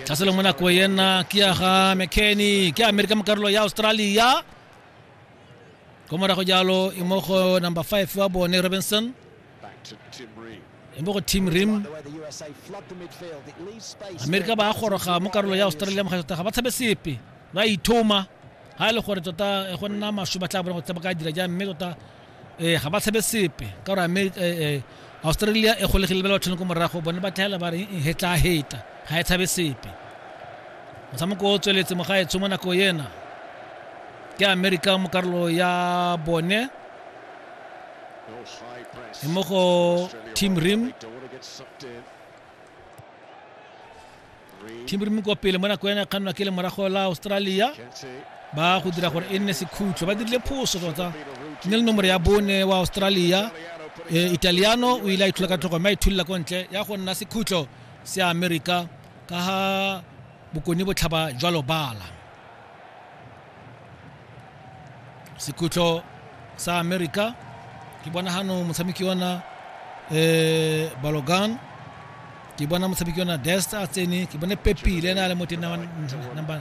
tlhaselo mo nako ena ke ya ga mckenny ke amerika mo karolo ya australia ko morago jalo e mo go number 5 wa bone robinson e mo go team rim amerika ba goroga mo karolo ya australia mo tota ga ba tshabe sepe ba ithoma ga e le gore tota e go nna masho ba tla bona go tsaba ka dira jang mme tota ee ga ba tshabe sepe ka gore ame australia e golegile ba le bathone ko morago bone ba tlhaela ba re he tla heta ga e tshabe sepe motshameko o tsweletse mogaetsho mo nako ena ke america mo karolo ya bone e mo go team rim thimbrimi kwa pele mo nako ya ne kgannwa ke le morago la australia ba go dira gore e nne sekhutlo ba dirile phoso tota ne le nomoro ya bone wa australia e, italiano o ile a ithola ka tlhogo mme a ithulela ko ntle ya go nna sekhutlo se america ka ga bokone botlhaba jwa lobala sekhutlo sa america ke bona gano motshameki ona eh balogan ke bona motshameki ona dest a tsene ke bone pepile ene a le mo teng number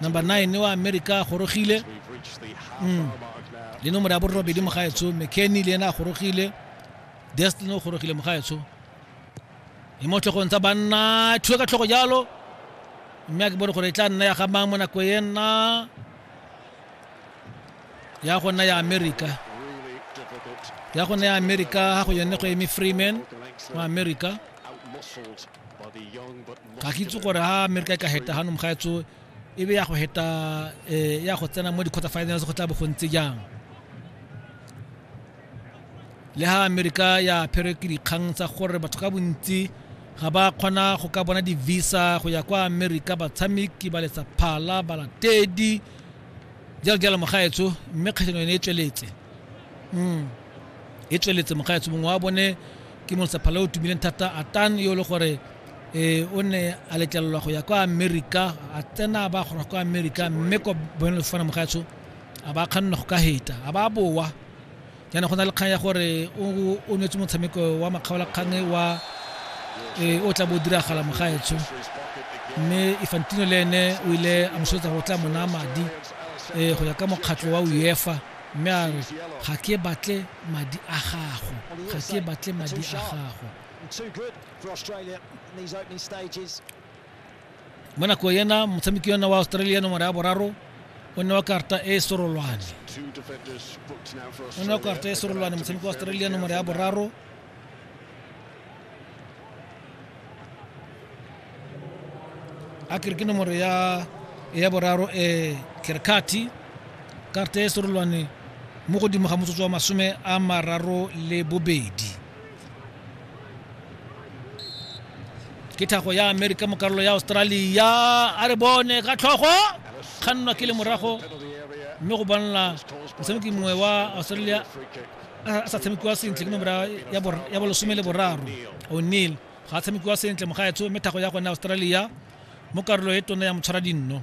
number 9 wa america a gorogile mm. le nomoro ya borobedi mo gaetsho mckenny le ene a gorogile dest le ne o gorogile mo gaetsho e mo tlhogong tsa banna thuo ka tlhogo jalo mme a ke bone gore e tla nna ya ga mang mo nako e nna ya go nna ya america ya go nna ya america ga go yone go eme freeman mo america ga ke itse gore ha america e ka heta ga nomga etso e be ya go heta eh, ya go tsena mo di-quarter finals go tla bo go ntse jang le ha amerika ya apherwe ke dikgang tsa gore batho ka bontsi ga ba kgona go ka bona di-visa go ya kwa amerika batshameki ba letsa phala balatedi jalo jalo mogaetsho mme kgatlhano yone e tsweletse Mm. e tsweletse mogaetsho mongwe wa bone ke molesa phala o tumileng thata atan yo e le gore eh, o ne a letlelelwa go ya kwa amerika a tsena a ba kgona go kwa amerika mme kwa boemelo fofana mogaetsho a ba kganna go ka heta a ba bowa yana go na le kgang ya gore o nwetse motshameko wa makgaolakgang e wa e, o tla bo diragala mogaetsho mme ifantino le ene o ile a mosoetsa go tla mona madi um go ya ka mokgatlho wa uefa mme a re ga ke batle madi a gago ga ke batle madi a gago mo nako ena motshameki yona wa australia nomoro ya boraro o nne wa karta e sorolwane o nne wa karta e sorolwane motshameki wa australia nomoro ya boraro a kere ke nomoro ya ya boraro e kerkati karta e sorolwane mo godimo ga motsotso wa masome a mararo le bobedi ke thago ya amerika mo karolo ya australia a re bone ka tlhogo kgannwa ke le morago mme go bonala motshameki mongwe wa australia a sa tshamekiwa sentle ke nomora ya bolesome le boraro o'neil ga a tshamekiwa sentle mogaetsho mme thago ya gone australia mo karolo e tona ya motshwara dinno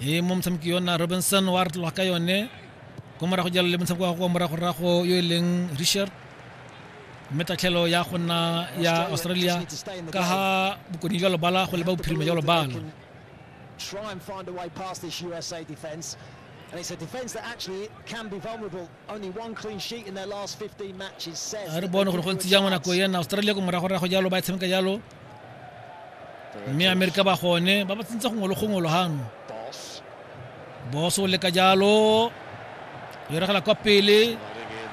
e mo motshameki yona robinson wa re tloga ka yone ko morago jalo le motshameko wa go moragorago yo e leng richard mme tatlhelo ya go nna ya australia ka ga bokoni jwa lobala go leba bophirima jwa lobala try and find a way past this USA defence. And it's a defence that actually can be vulnerable. Only one clean sheet in their last 15 matches says. Australia mme amerika ba gone ba ba tsentse gongwe le gongwe logang boso o leka jalo yo regela kwa pele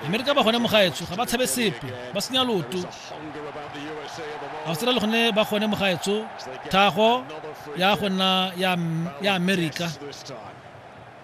amerika ba gone mogaetsho ga ba tshabe sepe ba senya loto australia gone ba gone mogaetsho thago ya gona ya amerika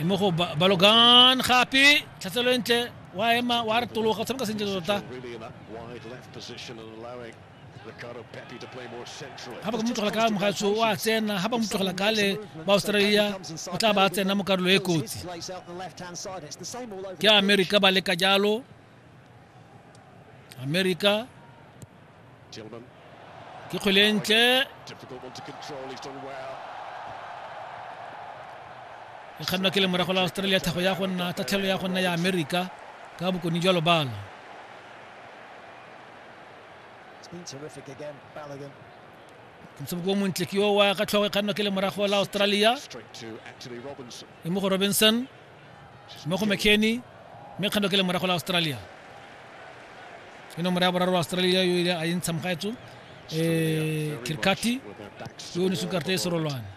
e mo go balogan gape tlhatselo e ntle wa ema wa re tologa o tshameka sentle tota ga ba ka mo tlogela ka mogatso o a tsena ga ba mo tlogela ka le ba australia o tla ba tsena mo karolo e kotsi ke america ba leka jalo america Tillman. ke kgwele e ntle Difficult one to control. He's done well. e kgannwa ke lemorago la australia tlhago ya go nna tatlhelo ya go nna ya amerika ka bokone jwa lobalo It's been terrific again, Balogun. motshameko o montle ke yo wa ka tlhogo e kgannwa ke lemorago la australia Straight to Anthony Robinson. e mo go robinson mo go mckenny mme kgando ke le morago la australia ke nomoro ya boraro australia yo ile a e ntsha mogaetso um eh, kirkati yo o ne sukarte e serolwane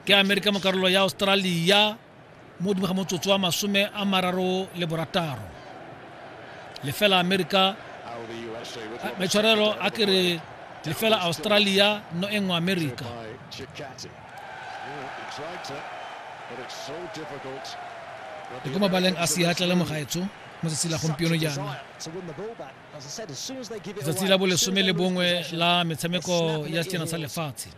ke amerika mo karolo ya australia mo godimo ga motsotso wa masome a mararo le borataro lefela amerika maitshwarelo a kere lefela australia no e nngwe amerika e ko mabaleng a seatla le mogaetsho mo tsatsi la gompieno jaana tsatsi la bolesome le bongwe la metshameko ya sejana sa lefatshe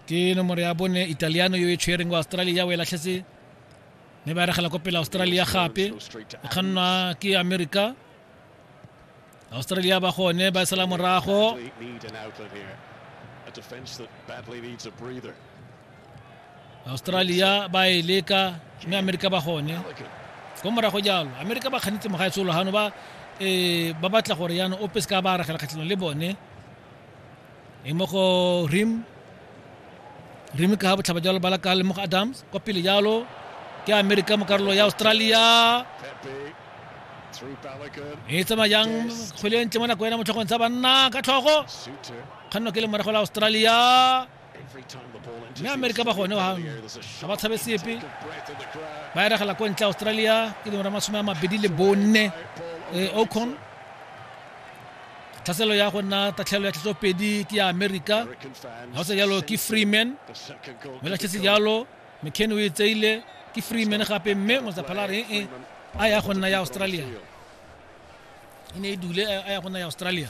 ke nomoro ya bone italiano yo e tshwereng wa australia o e latlhetse mme ba regela ko pele australia gape e kgannwa ke america australia ba gone ba sala morago australia ba e leka mme amerika ba gone ko morago jalo amerika ba kganetse mogaetsolo gano ba um ba batla gore yana ope se ka ba aragela kgatlhanong le bone e mo go rim rim ka botlhaba jalo bala ka le mo go adams kwa pele jalo ke amerika mo karolo ya australia e tsamayang kgwele ntle mo nako ena motlhogong tsa banna ka tlhogo kganno ke le morago la australia mme amerika ba gone gang ga ba tshabe sepe ba eregela ko ntle australia ke dingwe ra masome a mabedi le bonne eh, ocon tlhaselo ya go nna tatlhelo ya tlhatlopedi ke ya amerika ga o se jalo ke freeman mme latlhetse jalo mccan o e tseile ke freeman gape mme motsaphala re e a ya go nna ya australia e ne e dule a ya go nna ya australia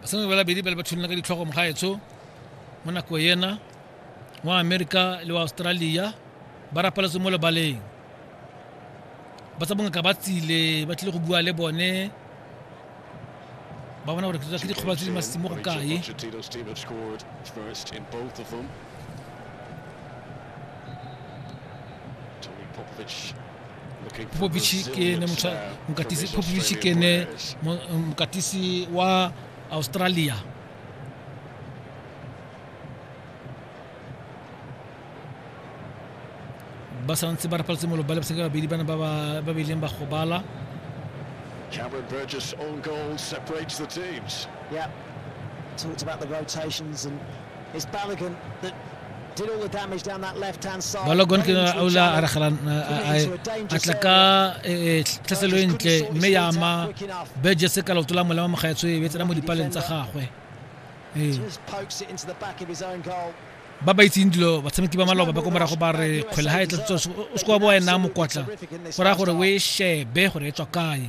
basadi ba labedi ba le ba tsholola ka ditlhogo mogaetsho mo nako ena wa amerika le wa australia ba rapaletse mo lebaleng ba tsa bongaka ba tsile ba tlile go bua le bone ba bona gore ke dikgobalo tse di masimo go kae Popovic popovici ke ene mokatisi popovici ke ene mokatisi wa australia ba santse ba rapaletse molo ba lebetse ka babedi bana ba ba ileng ba gobala Cameron Burgess on goal separates the teams. Yeah, talked about the rotations and Bala gon ke na aula ara khalan ai atlaka tlaselweng tle mme ya ama beje se ka lotula molema mo gaetswe e betsela mo dipaleng tsa gagwe ee ba ba itseng dilo batshameki ba maloba ba ko morago ba re kgwele ga e tlatso o se kwa bo wena mokotla go raya gore o e shebe gore e tswa kae